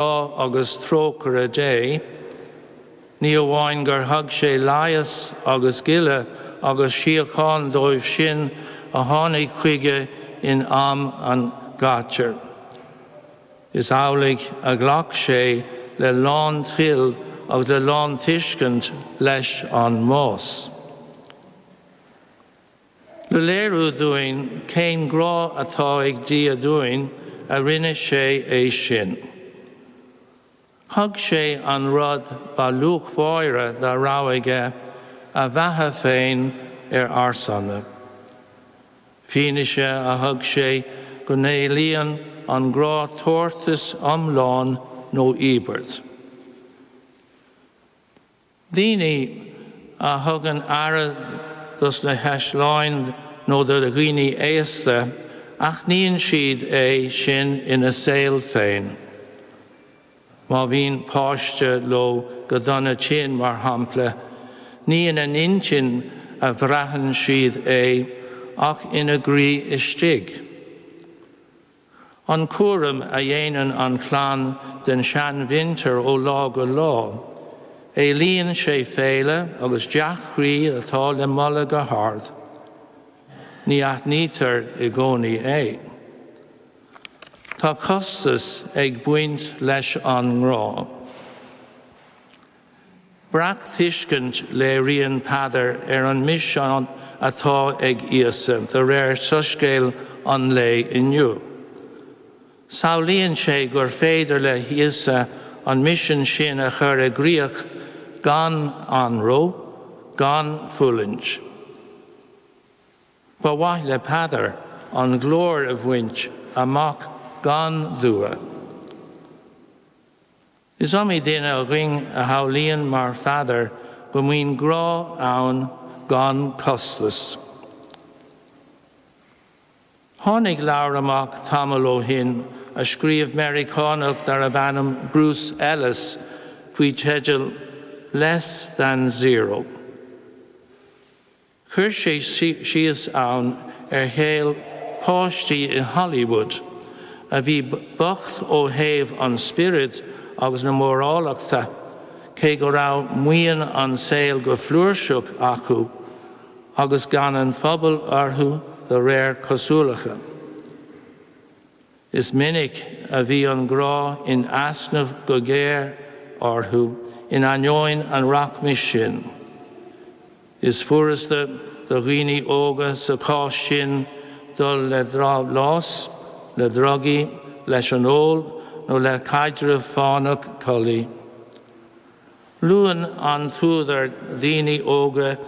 agus trócaire Dé, ní amháin gur thug sé leigheas agus gile agus síocháin dóibh sin a tháinig chuige in am an ghátair, is amhlaidh a ghlac sé le lán toil agus le lán tuiscint leis an mbás. Le léiriú dúinn cén grá atá ag Dia dúinn a rinne sé é sin. Thug sé an rud ba luachmháire dá raibh aige, a bheatha féin, ar ár son. Fianaise a thug sé go n-éilíonn an grá tabhartas iomlán nó íobairt. Daoine a thugann aire dos na heasláin nó do dhaoine aosta, aithníonn siad é sin in a saol féin. Má bhíonn páiste leo go dona tinn, mar shampla, ní in a n-intinn a bhraitheann siad é ach in a gcroí istigh. an cúram a dhéanann an chlann den seanmhuintir ó lá go lá. Éilíonn sé féile agus dea-chroí atá le moladh go hard. Ní aithnítear i gcónaí é. Tá costas ag baint leis an ngrá. Breacthuiscint a léiríonn Peadar ar an misean atá ag Íosa de réir Soiscéal an lae inniu. Samhlaíonn sé gur féidir le hÍosa an misean sin a chur i gcríoch gan anró, gan fulaingt. Ba mhaith le Peadar an ghlóir a bhaint amach gan dua. Is iomaí duine againn a shamhlaíonn mar Pheadar go mbíonn grá ann gan costas. Tháinig leabhar amach tamall ó shin a scríobh Meiriceánach darb ainm Bruce Ellis faoi teideal Less Than Zero. Chuir sé síos ann ar shaol páistí i Hollywood a bhí bocht ó thaobh an spioraid agus na mórálachta cé go raibh maoin an tsaoil go flúirseach acu agus gean an phobail orthu de réir cosúlachta. Is minic a bhíonn grá in easnamh go géar orthu in ainneoin an rachmais sin. Is furasta do dhaoine óga sa chás sin dul le drabhlás, le drugaí, leis an ól nó le caidreamh fánach collaí. Luann an t-údar daoine óga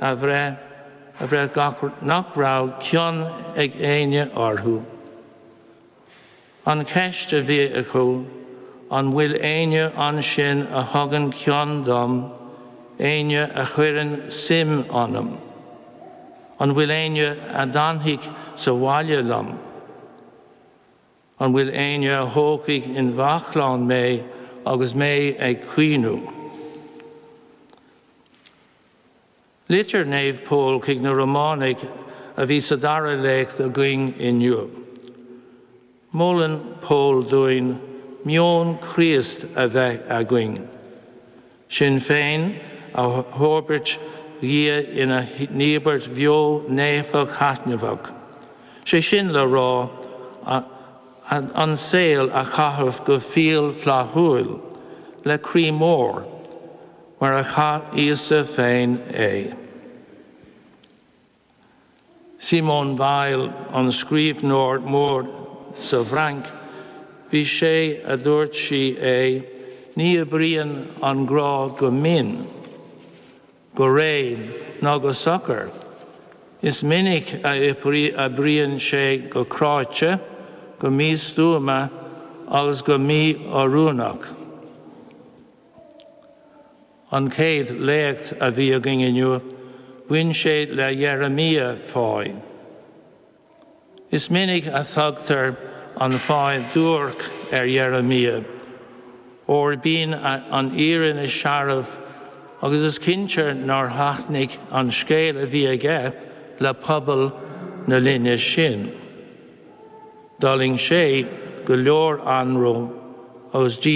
a bhraith nach raibh cion ag éinne orthu. An cheist a bhí acu, an bhfuil éinne ansin a thugann cion dom, éinne a chuireann suim ionam? An bhfuil éinne a d'fhanfadh sa bhaile liom? An bhfuil éinne a thógfadh ina bhaclainn mé agus mé ag caoineadh? Litir Naomh Pól chuig na Románaigh a bhí sa dara léacht againn inniu. Molann Pól dúinn meon Chríost a bheith againn. Sinn féin a thoirbhirt do Dhia inár n-íobairt bheo naofa thaithneamhach, sé sin le rá an saol a chaitheamh go fial flaithiúil, le croí mór, mar a chaith Íosa féin é. Simone Weil, an scríbhneoir mór sa bhFrainc, b'ise a dúirt sí é, ní oibríonn an grá go mín, go réidh ná go socair, is minic a oibríonn sé go cráite, go místuama agus go mí-oiriúnach. An chéad léacht a bhí againn inniu, bhain sé le Jeremiah fáidh. Is minic a thugtar an fáidh duairc ar Jeremiah, óir bíonn an fhírinne searbh agus is cinnte nár thaitnigh an scéal a bhí aige le pobal na linne sin. D'fhulaing sé go leor anró agus díomá.